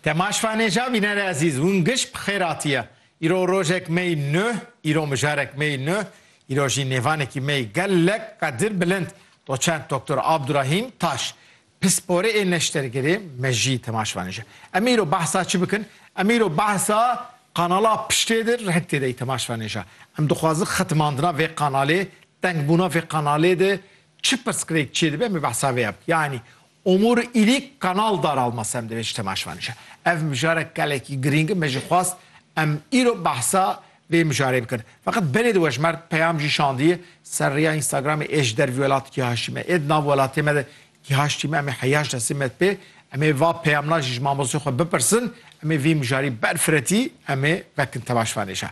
Te ma şvanê ja bînerê ezîz, hûn giş bi xêr hatiye. Îro rojek mey nuh, îro mijarek mey nuh, îro jî nêvanekî mey gelek qedir bilind, doçent Doktor Abdurahîm Taş, pisporê ê neştergirê mejî te ma şvanê ja. Em ê îro behsa çi bikin? Em ê îro behsa qanala piştê di reng tê dey te ma şvanê ja. Em dixwazin xetimandina vê qanalê, tengbûna vê qanalê di çi pirsgirêk çê dibe em ê behsa vê ya bikin. Yanî Omur Îlîk Kanal Daralma Semdê ji temaşvan dişa. Ev mijarek gelekî girîng in me jî xwast em îro behsa vê mijarê bikin. Feqet berê di wejmerd peyam jî şandiye ser rêya Instagramê ê ji dervî welat kîhaştî me ê di nav welatê me de kîhaştî me em ê heyaş destê me di pê em ê va peyamna jî ji mamostê xwe bipirsin em ê vî mijarî ber firetî em ê vekin temaşvanê şa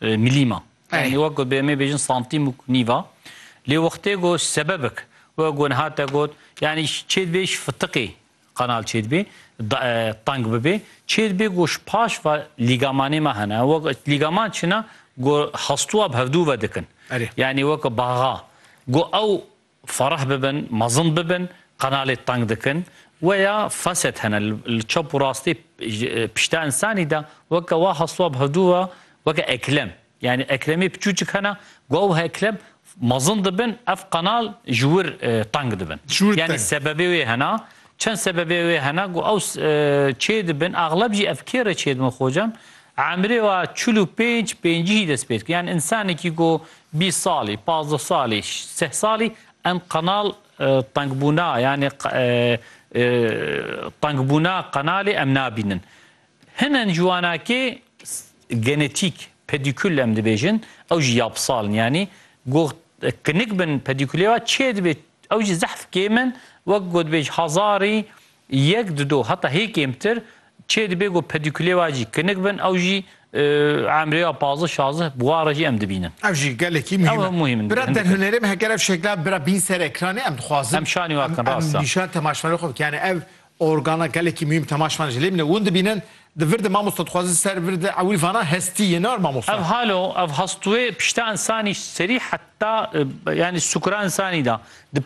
Milîma. Yanî wek ku bi emê bêjin santîm û nîva. Lê wextê ku sebebik wek ku niha te got yanî çêdibê ji fitiqê qanal çêdibê teng bibê. Çêdibê ku ji paş ve lîgamanê me hene. Wek lîgaman çi ne ku hestûa bi hevdû ve dikin. Yanî wek baxa ku ew Fereh bibin, mezin bibin, qenalê teng dikin. Weya feset hene li çap û rastê pişta însanî de weke wa heswab hedû wa weke eklem. Yanî eklemê piçûçik hene gow û eklem mezin dibin ev qenal ji wir teng dibin. Yanî sebebê wê hene. Çend sebebê wê hene ku ew çê dibin. Exleb jî ev kê re çê dibin xocam? Emrê wa çil û pênc, pêncî jî dest pê dikin. Yanî însanekî ku Bîst salî, pazdeh salî, seh salî em qenal tengbûna yanî tengbûna qenalê em nabînin. Henen ciwanakê genetîk, pedîkul em dibêjin, ew jî yapsal in. Yanî goh kinik bin pedîkulê ve çê dibê ew jî zehf kêm in. Wek gotbêj hezarî Yek di do heta hê kêmtir çê dibê ku pedîkulê wa jî kinik bin ew jî emrê wa pazdeh şazdeh bi wa re jî em dibînin. Ev jî gelekî muhîm e. Bira derhunerê me heger ev şekla bira bîn ser ekranê em dixwazin em şanî wa bikin rast e. Em nîşan temaşvanê xwe bikin yanî ev organa gelekî muhîm temaşvan ji lê min e hûn dibînin di vir de mamosta dixwazin ser vir de ewil vana hestî yê nar mamosta. Ev hal o ev hastûyê pişta insanî serî heta yanî sukura insanî de di